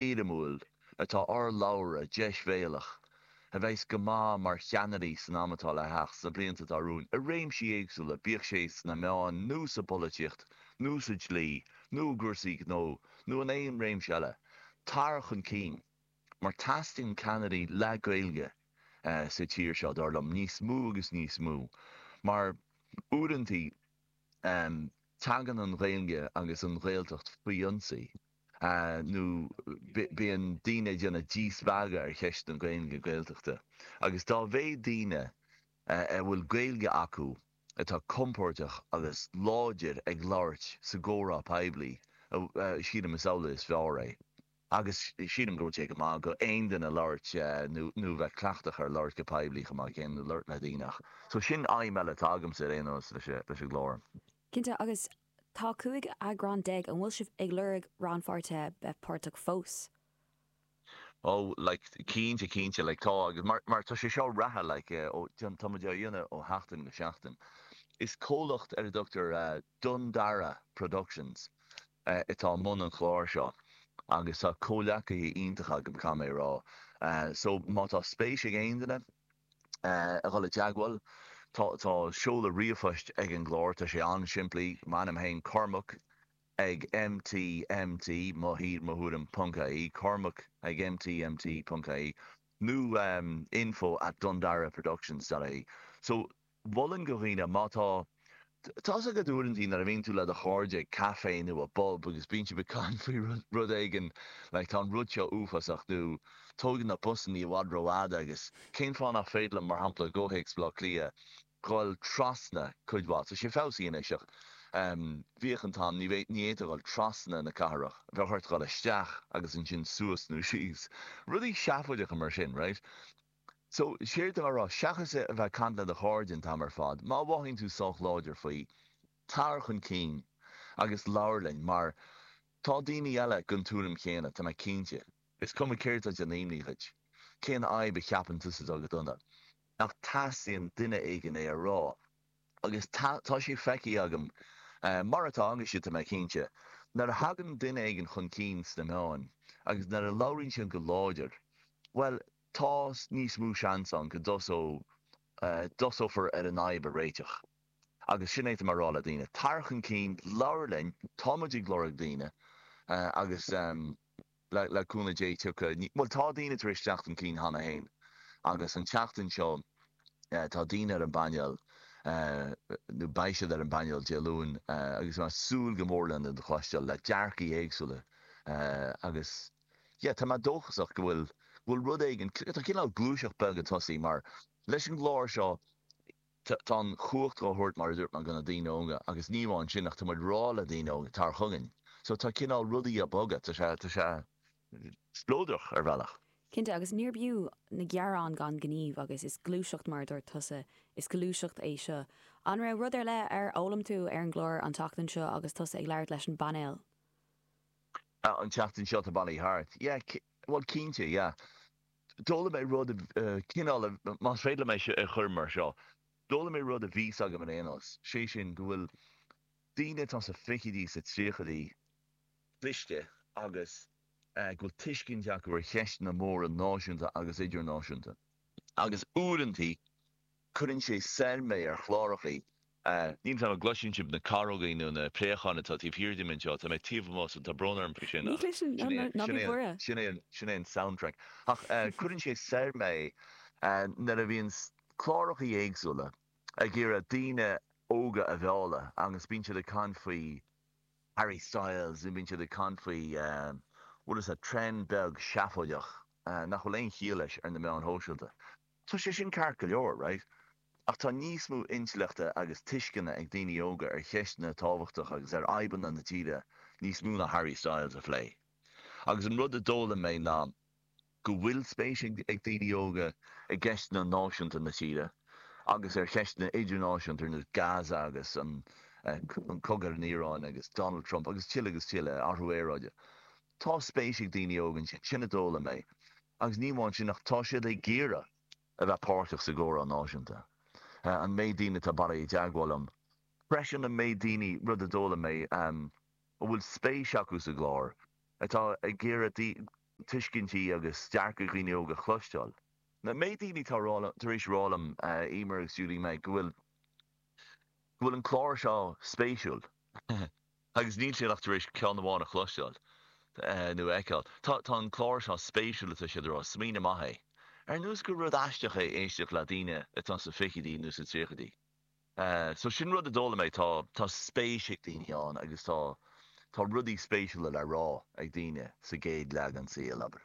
éirimiúil atá urlabhra deisbhéalach a bheas go maith mar cheannairí san am atá le theacht, sna blianta atá romhainn, i réimsí éagsúla, bíodh sé sna meáin nó sa bpolaitíocht nó sa dlí nó i gcúrsaí gnó nó in aon réimse eile. Tar chun cinn. Mar teastaíonn ceannairí le Gaeilge sa tír seo, dar liom, níos mó agus níos mó. Mar uaireantaí tagann an Ghaeilge agus an Ghaeltacht faoi ionsaí. nó bíonn daoine ag déanamh díspeagadh ar cheist na Gaeilge is na Gaeltachta, agus dá mhéad daoine a bhfuil Gaeilge acu atá compóirteach agus láidir ag labhairt sa gcomhrá poiblí, sílim, is amhlaidh is fearr é. Agus sílim go bhfuil sé go maith go aon duine labhairt nó bheith cleachtach ar labhairt go poiblí chomh maith céanna, labhairt le daoine. So sin aidhm eile atá agamsa ar aon nós leis an gclár. Cinnte, agus Tá cúig eagrán déag. An bhfuil sibh ag lorg rannpháirtithe bheith páirteach fós? Ó like cinnte cinnte like tá agus mar tá sé seo reatha like ó tá tá muid á dhéanamh ó sheachtain go seachtain. Is comhlacht ar a dtugtar Dún Dara Productions atá i mbun an chláir seo agus tá comhleacaithe iontacha agam caithfidh mé a rá so má tá spéis ag aon duine, a dhul i dteagmháil. Tá, tá seoladh ríomhphoist ag an gclár, tá sé an-simplí, m'ainm féin, Cormac ag mt mt, mo thír, mo thuairim, ponc, ie cormac ag mt mt ponc, ie nó info at dundaraproductions dot ie. So, mholfainn do dhaoine, má tá Tá's agat uaireantaí nuair a bhíonn tú le do chairde ag café nó i bpub agus bíonn sibh ag caint faoi rud éigin like tá an rud seo uafásach nó tógann na busanna i bhfad ró-fhada agus cén fáth nach féidir liom mar shampla i gcomhthéacs Bhleá Cliath dhul trasna cuid mhaith tá sé feabhsaithe anois ach em bhíodh an t-am ní fhéadfá dhul trasna na cathrach bheadh ort dhul isteach agus ansin suas nó síos rudaí seafóideacha mar sin right. So, séard tá mé a rá, seachas a bheith ag caint le do chairde an t-am ar fad, má mhothaíonn tú sách láidir faoi, tar chun cinn agus labhair linn, mar tá daoine eile den tuairim chéanna, tá mé cinnte. Is cuma céard tá ag déanamh imní dhuit, cén fhadhb a cheapann tusa atá go dona, ach teastaíonn duine éigin é a rá, agus tá, tá sé feicthe agam, mar atá agaibhse, tá mé cinnte, nuair a thagann duine éigin chun cinn sna meáin, agus nuair a labhraíonn siad go láidir, bhuel, Tá níos mó seans ann go dtosófar ar an fhadhb a réiteach agus sin é atá mé a' rá le daoine. Tar chun cinn, labhair linn, tá muid ag lorg daoine agus le cúnamh Dé tiocfaidh, bhuel tá daoine tar éis teacht chun cinn cheana féin agus an tseachtain seo tá daoine ar an bpainéal, nó beidh siad ar an bpainéal Dé Luain agus tá mé a' súil go mór lena gcloisteáil le dearcaí éagsúla agus. Yeah, tá mé dóchasach go bhfuil, go bhfuil rud éigin, tá cineál gluaiseacht bheag ag tosaí mar leis an gclár seo tá an chumhacht dhá thabhairt mar a dúirt mé go na daoine óga agus ní amháin sin ach tá muid ag rá le daoine óga tar chugainn so tá cineál rudaí a' bogadh, tá sé, tá sé spleodrach ar bhealach. Cinnte agus níorbh fhiú an gearán gan gníomh agus is gluaiseacht mar a dúirt tusa, is gluaiseacht é seo. An raibh rud ar leith ar fhoghlaim tú ar an gclár an tseachtain seo agus tusa ag labhairt leis an bpainéal? Ah, an tseachtain seo tá bailithe thart. Yeah, bhuel, cinnte, yeah. D'fhoghlaim mé rud, cineál, más féidir liom é seo a chur mar seo, d'fhoghlaim mé rud a bhí a fhios agam ar aon nós, sé sin go bhfuil daoine atá sa fichidí, sa tríochaidí cliste agus go bhfuil tuiscint acu ar cheisteanna móra náisiúnta agus idirnáisiúnta agus uaireantaí, Cuireann sé soir mé ar chlárachaí a. Níl a fhios agam an gcloiseann sibh na carógaí nó na préacháin atá taobh thiar díom anseo? Tá mé taobh amuigh so tá brón orm faoi sin Ní ach chloiseann, sin é an, ná sin bí é an, buartha. sin é an, sin é an soundtrack. Ach eh cuireann sé soir mé nuair a bhíonns clárachaí éagsúla ag iarraidh daoine óga a mhealladh agus bíonn siad ag caint faoi Harry Styles nó bíonn siad ag caint faoi bhfuil fhios a'd trend beag seafóideach nach bhfuil aon chiall leis ar na meáin shóisialta. Tá sé sin ceart go leor, right? Ach tá níos mó intleachta agus tuisceana ag daoine óga ar cheisteanna tábhachtacha agus ar fhadhbanna na tíre, níos mó ná Harry Styles a phlé. Agus an rud a d'fhoghlaim mé ná go bhfuil spéis ag daoine óga i gceisteanna náisiúnta na tíre agus ar cheisteanna idirnáisiúnta ar nós Gaza agus an cogadh ar an Iaráin agus Donald Trump agus tuilleadh agus tuilleadh, athrú aeráide. Tá spéis ag daoine óga ansin, sin a d'fhoghlaim mé, agus ní amháin sin ach tá siad ag iarraidh a bheith páirteach sa gcomhrá náisiúnta. An méid daoine atá ag iarraidh i dteagmháil liom freisin, an méid daoine, rud a d'fhoghlaim mé, a bhfuil spéis acu sa gclár, atá ag iarraidh tuiscintí agus dearcadh daoine óga a chloisteáil. An méid daoine atá tar éis rá liom, Emer agus Julie Meg, go bhfuil. go bhfuil an clár seo spéisiúil agus níl siad ach tar éis ceann amháin a chloisteáil nó a fheiceáil. Tá tá an clár seo spéisiúil atá siad a rá, smaoineamh maith é. Ar nós gur rud aisteach é éisteacht le daoine atá sa fichidí nó sa tríochaidí. So sin rud a d'fhoghlaim mé, tá tá spéis ag daoine ann agus tá tá rudaí spéisiúla le rá ag daoine sa gcéad leath den saol, abair.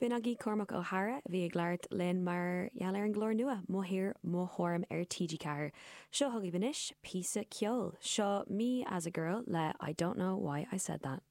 B'in agaibh Cormac Ó hEadhra a bhí ag labhairt linn mar gheall ar an gclár nua, M'Athair, Mo Thoirm ar TG4. Seo chugaibh anois píosa ceoil. Seo Me As A Girl le I Don't Know Why I Said That.